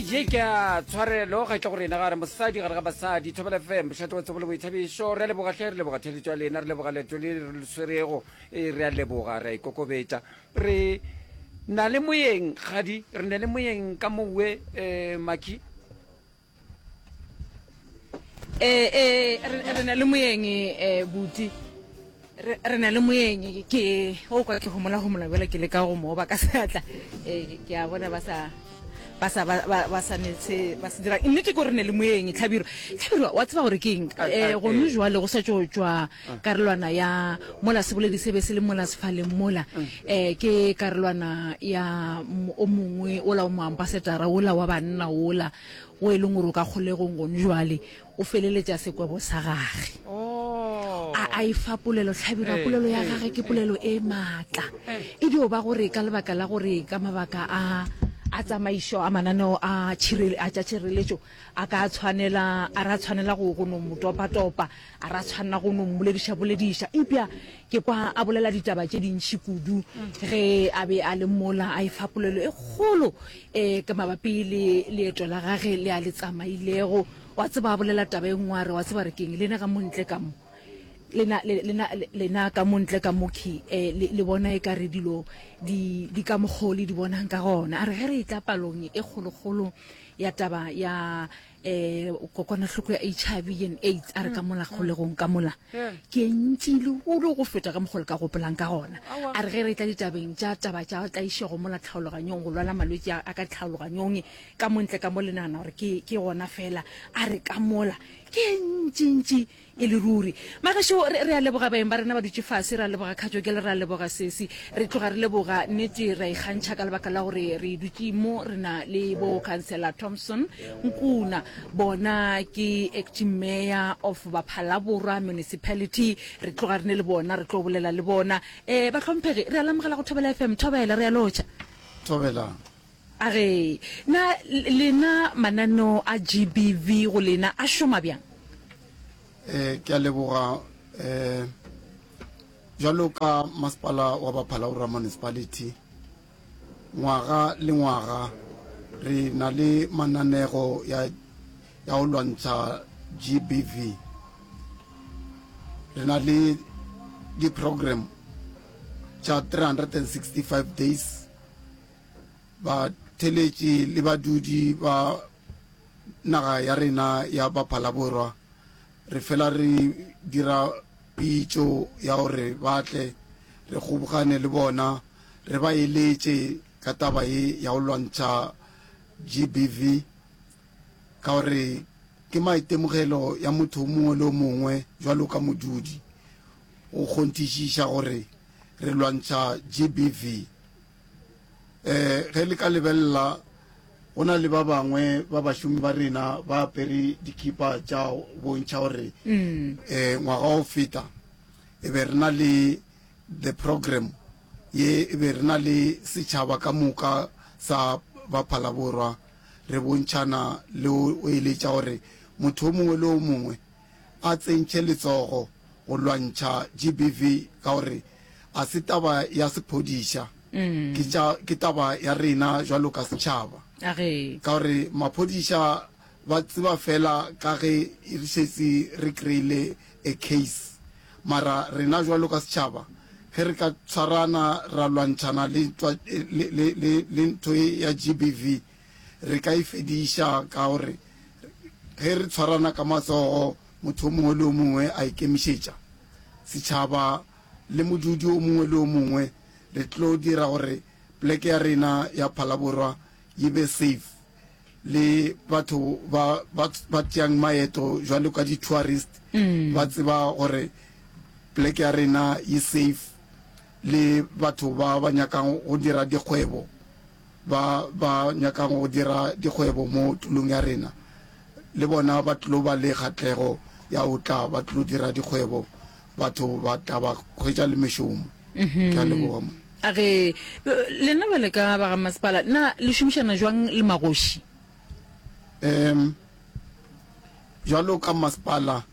ye ke a tshwarelo ga tle go rena gare mosadi gare ga basadi thobela fm bošate wa tsebo le boithabišo re a leboga tlhe re leboga theletso ya lena re leboga leto le re le swerego e re a leboga re a ikokobetsa re na le moyeng gadi re na le moyeng ka mowe um maki eh eh re na le moyeng eh buti re na le moyeng ke o kwa ke homola homola bjale ke le ka go mo ba ka seatla eh ke a bona ba sa ba sa ba sa netse ba se dira nnete ke gore ne le moyeng tlhabiro tlhabiro wa tseba gore ke eng eh go no jwale go sa tšo tšwa karolwana ya mola seboledi se be se le mola sefaleng mola um ke karolwana ya o mongwe ola o moambasetara ola wa banna ola o e leng gore o ka kgolegong gone jwale o feleletša sekwebo sa gage oh. a a e fa polelo tlhabira eh, polelo ya eh, gage ke eh. polelo e maatla e dio ba gore ka lebaka la gore ka mabaka a a tsamaišo a mananeo a tša tšhireletšo a ka tshwanela a ra tshwanela go no motopatopa A re a tshwanela go no mmoledišabolediša, eupša ke kwa a bolela ditaba tše dintši kudu ge a be a le mola, a efa polelo e kgolo um ka mabapi le leeto la gage le a le tsamailego. Wa tseba, a bolela taba e nngwe a re, Wa tseba re keng? Lena ka mo ntle ka mo, lena, lena, lena ka mo ntle ka mo, Ki, um le, le bona e ka re dilo di, di ka mokgwa o le di bonang ka gona. A re ge re etla palong e kgolokgolo ya taba ya. eh kokwanahloko ya hiv and aids a re ka mola kgolegong ka mola ke e ntši lehulo go feta ka mokgole ka gopolang ka gona a re ge re tla ditabeng tša taba tša tlaišego mola tlhaologanyong go lwala malwetse a ka tlhaologanyong ka montle ka mo le nagana gore ke gona fela a re ka mola ke e ntšintši E le ruri. Magašo, re, re a leboga baeng ba rena ba dutše fase, re a leboga Khatšokele, re a leboga sesi. Re tloga re leboga, nnete, re a ikgantšha ka lebaka la gore re dutše mo, re na le bo Khansela Thompson, Nkuna, bona ke Acting Mayor of Baphalaborwa Municipality, re tloga re ne le bona, re tlo bolela le bona. Eh, bahlomphegi, re a le amogela go Thobela FM. Thobela, re a lotšha. Thobelang. A re, Na lena mananeo a GBV go lena a šoma bjang? E, ke a leboga. E, bjalo ka Masepala wa Baphalaborwa Municipality, ngwaga le ngwaga re na le mananego ya, ya go lwantšha GBV. Re na le di-program tša 365 days. batheletši le badudi ba naga ya rena ya Baphalaborwa re fela re dira pitšo ya gore ba tle re kgobogane le bona re ba eletše ka taba ye ya go lwantšha GBV ka gore ke maitemogelo ya motho o mongwe le o mongwe bjalo ka modudi go kgonthišiša gore re lwantšha GBV. um ge le ka lebelela go na le ba bangwe ba bašomi ba rena ba apere dikipa tša bontšha gore um ngwaga o feta e be re na le the program ye e be re na le setšhaba ka moka sa baphalaborwa re bontšhana le o eletša gore motho o mongwe le o mongwe a tsentšhe letsogo go lwantšha GBV ka gore a se taba ya sephodiša, ke tša, ke taba ya rena jwalo ka setšhaba. A re. Ka gore maphodiša ba tseba fela ka ge re šetše re kreile a case. Mara rena jwalo ka setšhaba ge re ka tshwarana ra lwantšhana le ntwa, le, le, le, le ntho ye ya GBV, Re ka e fediša ka gore ge re tshwarana ka matsogo, motho o mongwe le o mongwe a ikemišetša, setšhaba le modudi o mongwe le o mongwe, re tlo dira gore pleke ya rena ya Phalaborwa yi be safe le batho ba ba tšeang maeto jwalo ka di tourist ba tseba gore pleke ya rena yi safe le batho ba ba nyakang go dira dikgwebo. ba ba nyakago go dira dikgwebo mo tulong ya rena le bona ba tlo ba le kgatlego ya go tla ba tlo dira dikgwebo, batho ba tla ba hwetša le mešomo. Ke a leboga monna. A re, Lena bjale ka ba ga masepala na le šomišana bjang le magoši? Em, Bjalo ka masepala,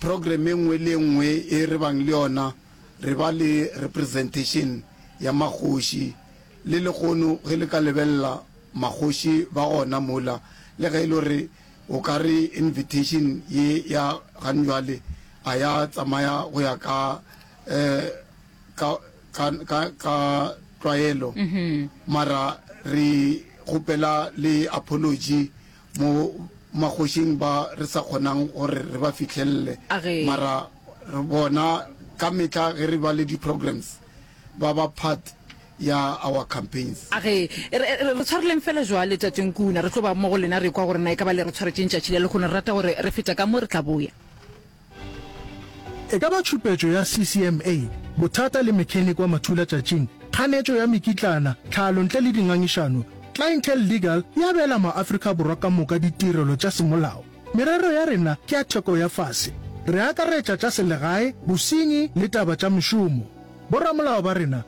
Program e nngwe le e nngwe e re bang le yona re ba le representation ya makgoši, le lehono ge le ka lebelela makgoši ba gona mola, le ge e le gore o ka re invitation ye ya ganjwale a ya tsamaya go ya ka ka ka ka ka tlwaelo, mara re kgopela le apology Mo magošing ba re sa kgonang gore re ba fihlelele, mara re bona ka mehla ge re ba le di-programs ba ba part ya our campaigns. A re, Re, re, re tshwareleng fela jwale, Tate Nkuna. Re tlo ba mo go lena, re ekwa gore na e ka ba le re tshwaretše ntšatši le lehono. Re rata gore re feta ka mo, re tla boya. E ka ba tšhupetšo ya CCMA, bothata le mechanic wa mathulatšatšing, kganetšo ya mekitlana, tlhalo ntle le dingangišano, Clientele Legal e abela maAfrika Borwa ka moka ditirelo tša semolao. Merero ya rena ke ya theko ya fase. Re akaretša tša selegae, bosenyi le taba tša mešomo. Boramolao ba rena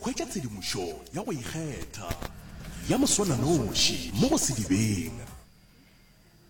Hwetša tshedimošo ya go ikgetha ya moswananoši mo go sedibeng.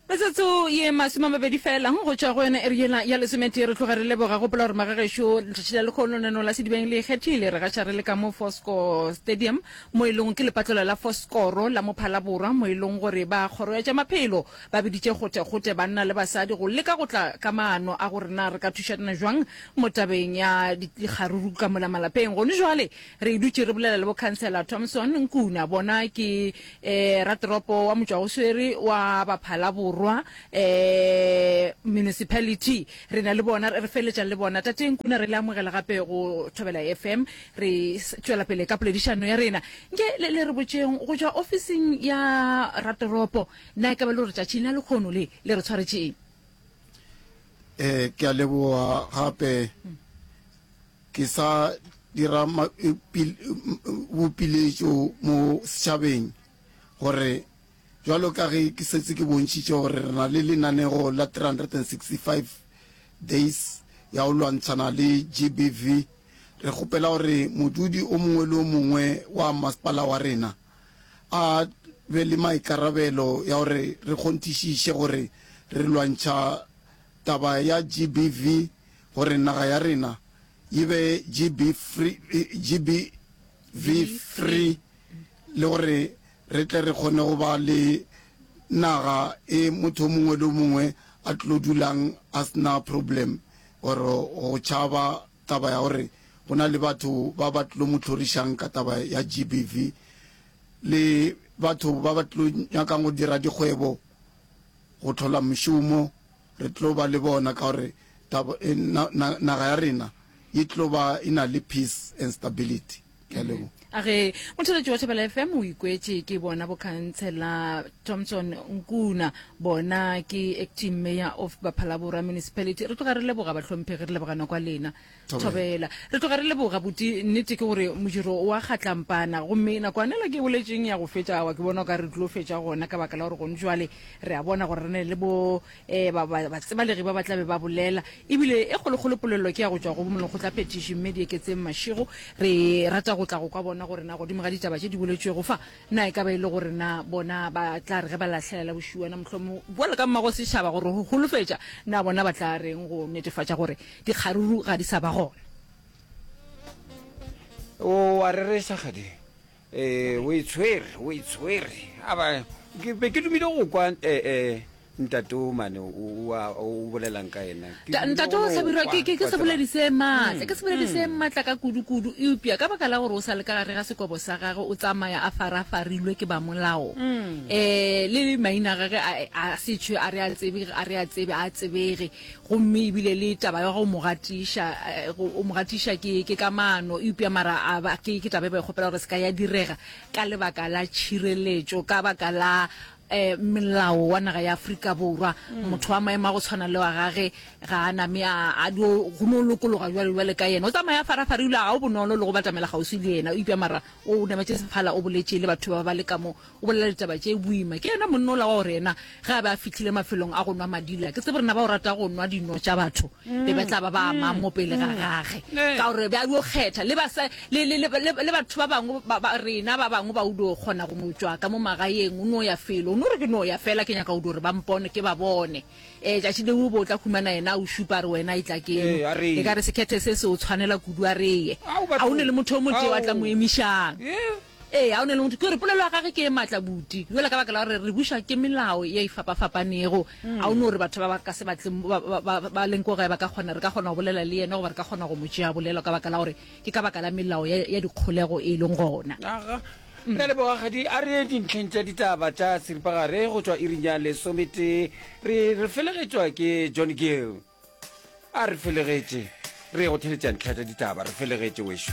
Metsotso ye masome a mabedi fela go tšwa go yona iri yela ya lesometee, re tloga re leboga. Gopola gore magagešo letšatši la lekgolo lenaneo la sedibeng le ikgethile. Re gaša re le ka mo Fourscore Stadium mo e lego ke lepatlola la Fourscore la mo Phalaborwa mo e lego gore ba kgoro ya tša maphelo Ba biditše gotegote banna le basadi go leka go tla ka maano a gore na re ka thušana jwang mo tabeng ya dikgaruru ka mola malapeng. Gone jwale re dutše re bolela le Bokhansela Thompson Nkuna, bona ke um ratoropo wa motšwagoswere wa Baphala Borwa um Municipality, re na le bona, re feletša le bona. Tate Nkuna re le amogela gape go Thobela FM, re tšwela pele ka poledišano ya rena. Nke le re botšeng, go tšwa ofising ya ratoropo, Na e ka ba le gore tšatšing la lekgono le le re tshwaretše eng? Eh, ke a leboga gape. Hmm. Ke sa dira eh, bopiletšo mo setšhabeng gore jalo ka ge ke setse ke bontšhitše gore re na le lenanego la 365 days ya go lwantšhana le gbv re kgopela gore modudi o mongwe le o mongwe wa masepala wa rena a be le maikarabelo ya gore re kgonthišiše gore re lwantšha taba ya GBV gore naga ya rena e be GBV-free le gore re tle re kgone go ba le naga e motho o mongwe le o mongwe a tlo dulang a se na problem or go tšhaba Taba ya gore go na le batho ba ba tlo mo hlorišang ka taba ya GBV le batho ba ba tlo nyakang go dira dikgwebo, go hlola mešomo, re tlo ba le bona ka gore naga ya rena e tlo ba e na le peace and stability. ke a leboga a re motheletši wa thebela fm o ikwetše ke bona bokhantsela thompson nkuna bona ke acting mayor of baphalaborwa municipality re tloga re leboga bahlomphegi re lebogana kwa lena Thobela. thobela re tloga re leboga buti nnete ke gore modiro wa kgatlampana gomme nakwanela ke e boletšeng ya go fetša awa ke bona o ka re tlo fetša gona ka baka la gore gone jwale re a bona gore re ne le bo um ba ba- batsebalegi ba ba tla be ba bolela ebile e kgolokgolo polelelo ke ya go tšwa go bomolokgotlaphetiši mme di eketseng mašego re rata go tla go kwa bona gore na godimo ga ditaba tše di boletšwego fa na e ka ba e le gore na bona ba tla re ge ba lahlelela bošiwana mohlomong bjalo ka mmago setšhaba gore go holofetša na bona ba tla reng go netefatša gore dikgaruru ga di sa ba gona O a rereša kgading. Ee, o e tshwere, o e tshwere. A ba, ke be ke dumile go kwa eh, eh, ntate o mane o, o, a- o bolelang ka ena. Ke Ta- dumile ntate go o no hlabirwa kwa, ke ke- ke wa seboledi tseba. se maatla ke seboledi se maatla ka kudukudu eupša ka baka la gore o sa le ka gare ga sekobo sa gagwe o tsamaya a farafarilwe ke ba molao um le maina a gage a- a setšhwe a re a tsebe a re a tsebe a tsebege Gomme ebile le taba ya go mo gatiša, go mo gatiša ke, ke ka mano, eupša mara a ba, ke, ke taba e ba e kgopela gore se ka ya direga, ka lebaka la tšhireletšo, ka baka la um melao wa naga ya Afrika Borwa. Mm. Motho wa maemo a go tshwana le wa gage ga a name a, a dio, go no lokologa jwale jwale ka yena. O tsamaya farafara, ebile ga o bonolo le go batamela kgauswi le yena, eupša mara o nametše sephala, o boletše le batho ba ba le ka mo, O bolela ditaba tše boima. Ke yena monna ola wa gore yena ge a be a fihlile mafelong a go nwa madila, ke tsebe rena ba o rata go nwa dino tša batho, be ba tla ba ba amang mo pele ga gage, ka gore be a yo kgetha le basa le le le le le batho ba bangwe ba, ba rena ba bangwe ba o dio kgona go mo tšwa ka mo magaeng o no ya felo o no re ke no ya fela ke nyaka o dio re ba mpone ke ba bone eh tšatši le o bo tla humana yena o šupa re wena e tla ke Ee, a re ye. e ka re sekhethe se se o tshwanela kudu a re ye Au, batho. a o ne le motho o motee wa tla mo Au. emišang Ee. Ee, a o na le motho. Ke gore polelo ya gage ke e matla budi yola ka baka la gore re buša ke melao ye e fapafapanego. A o no re batho ba ba ka se batle ba, ba, ba, ba leng ko gae ba ka kgona, re ka kgona go bolela le yena goba re ka kgona go mo tšea bolelo ka baka la gore ke ka baka la melao ya, ya dikgolego e leng gona. Aga. Re a leboga kgadi. A re ye dintlheng tša ditaba tša seripagare go tšwa iring ya lesometee. Re, re felegetšwa ke John Gill. A re felegetše. Re ye go theeletša ntlha tša ditaba. Re felegetše, wešo.